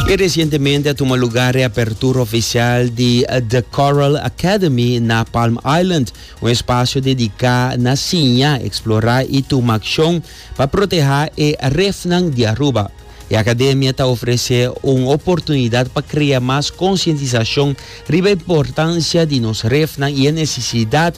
Y recientemente a tuma lugar reapertura oficial di The Coral Academy na Palm Island, un espacio dedica na siña, explora y tuma accion pa proteha e refnan di Aruba. E academia ta ofrece un oportunidad pa crea mas concientisacion riba e importancia di nos refnan y e necesidad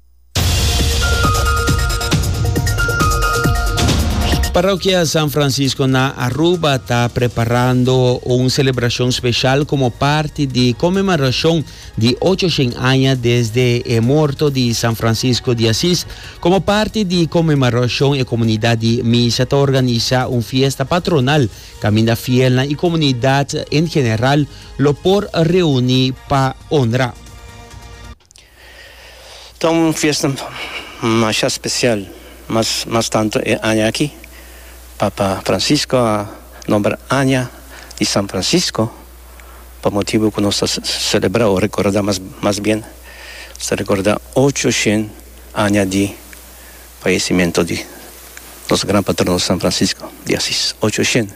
Parokia San Francisco na Aruba ta preparando un celebracion special como parti di conmemoracion di ocho shen aña desde e morto di San Francisco di Asis. Como parti di e conmemoracion e comunidad di Misa ta organiza un fiesta patronal caminda fielnan y comunidad en general lo por reuni pa honra. Ta un fiesta masha special, mas mas tanto e aña aki, Papa Francisco a nombra Aña di San Francisco pa motibu cu nos ta celebra o recorda mas mas bien nos ta recorda ocho shen aña di fallecimento di nos gran patrono San Francisco di Asis, ocho shen.